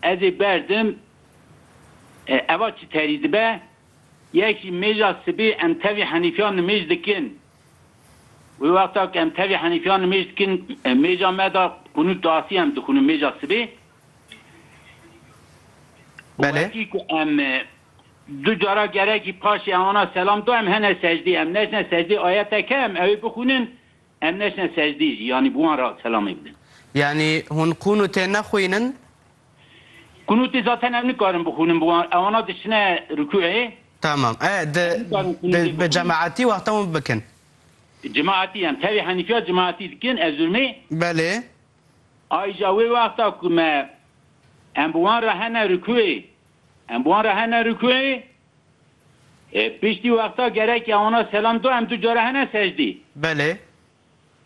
Ez ê berdim eva çi terî dibe. Yek jî mêja sibê em tevî henîfiya nimêj dikin. Wê wexta ku em tevî henîfiya nimêj dikin mêja me de qunût diasî em dixwînin mêja sibê. Belê. Wekî ku em du cara gerekî paşê ewana selam da em hene secdeyê. Em neçine secdeyê ayeteke em ew ê bixwînin Em neçine secdî jî, yanî bi wan re selamê bidin. Yanî hûn qûnûtê nexwînin? Qûnûtê zaten em nikarin bixwînin bi wan, ewana diçine rukûê. Tamam, e di bi cemaetî wexta wan bikin. Cemaetî, em tevî henîfiya cemaetî dikin, ez û me. Belê. Aija wê wexta ku me em bi wan re hene rukûê, em bi wan re hene rukûê, E, piştî wexta gerek e wana selam do em du cara hene secdî? Belê.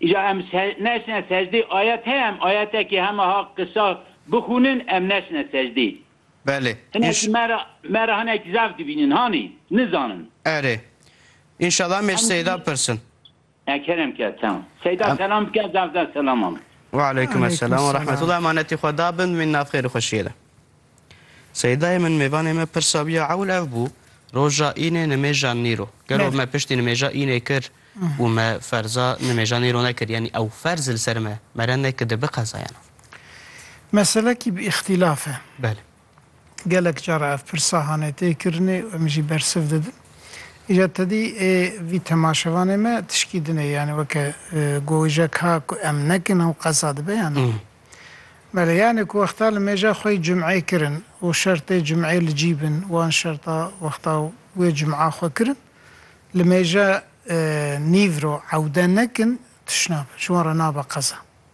Îja em se neçine secdî ayet heye em ayetekê hema ha qisa bixwînin em neçine secdî. Belê. Hinekî Înş me ra me ra hinekî zaf dibînin hanî nizanin. Erê. Înşela em ê ji Seyda pirsin. Ekerem ke tem. Seyda selam bike zevde selaman. Wealeykum eselam ve rahmetullah emanetî xwe da bin min nav xêr û xweşiyê de. Seydayê min mêvanê me pirsa wî ya ewl ev bû roja înê nimêja nîro gelo me piştî nimêja înê kir û me ferza nimêja nîro nekir yanî ew ferz li ser me mere nekir di biqezayana. Meselekî bi îxtîlaf e. Belê. Gelek cara ev pirsa hane tê kirinê û em jî bersiv didin. Îja tedî ê vî temaşevanê me tişkî din ê, yanî weke gowijek ha ku em nekin ew qeza dibe yan na? Belê, yanî ku wexta li mêja xwe yî cumeyê kirin û şertê cumeyê li cî bin, wan şerta wexta wê cuma xwe kirin, li mêja nîvro ewde nekin, tiş nabe, ji wan re nabe qeza.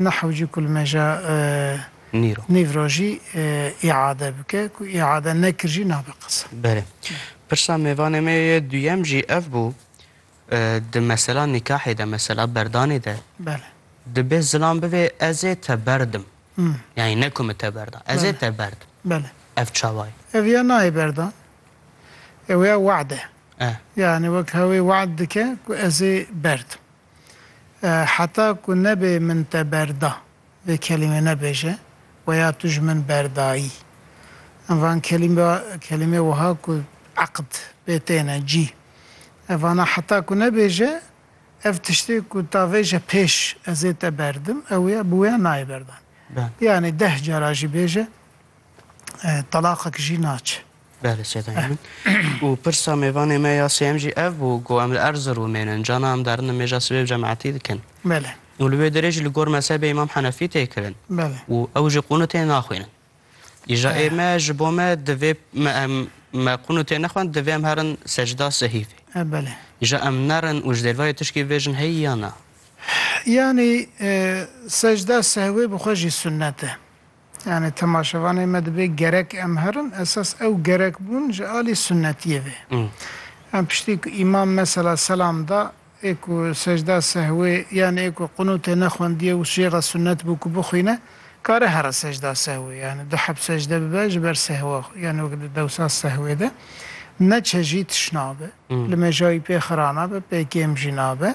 Nahw jî kulmeja nîv ra jî îade bike. Ku îade nekir jî nabe qise. Belê. Pirsa mêvanê me yê duyem jî ev bû, di mesela nîkahê de, mesela berdanê de dibê zilam bivê ez ê te berdim. Yanî ne ku min te berda. Ez ê te berdim. Belê. Ev çawa ye? Ev ya nayê berdan. Ew ya we'd e. Yanî wek hewê we'd dike ku ez ê berdim. Heta ku nebe min te berda vê kelîmê nebêje we ya tu ji min berdayî. Em van kelîmê wiha ku eqd pê têne cî. Ev vana heta ku nebêje ev tiştê ku ta vêje pêş ez ê te berdim ew ya bi wêya nayê berdan. Yanî deh cara jî bêje talaqek jî naçe. Belê Sêda Emin. Û pirsa mêvanê me ya sêyem jî ev bû ku em li Erziromê ne, cana em derin nimêja sibê bi cemaetî dikin. Belê. Û li wê derê jî li gor mezhebê Îmam Henefî tê kirin. Belê. Û ew jî qûnûtê naxwînin. Îja ê me ji bo me divê me em me qûnûtê nexwend divê em herin secda sehîfê. E belê. Îja em nerin û ji dêrvayê tişkî vêjin heyî ya na? Yanî secda sehwê bi xwe jî sunnet e. Yanî temaşevanê me dibê gerek em herin, esas ew gerek bûn ji alî sunnetiyê vê. Em piştî ku îmam mesela selam da, ê ku secda sehwê yan ê ku qunûtê nexwendiye û şêxa sunnet bû ku bixwîne, kare here secda sehwê, yanî du heb secde bibe ji ber sehwa xwe, yanî wek di dewsa sehwê de ne çejî tişt nabe, li mêja wî pê xira nabe, pê kêm jî nabe,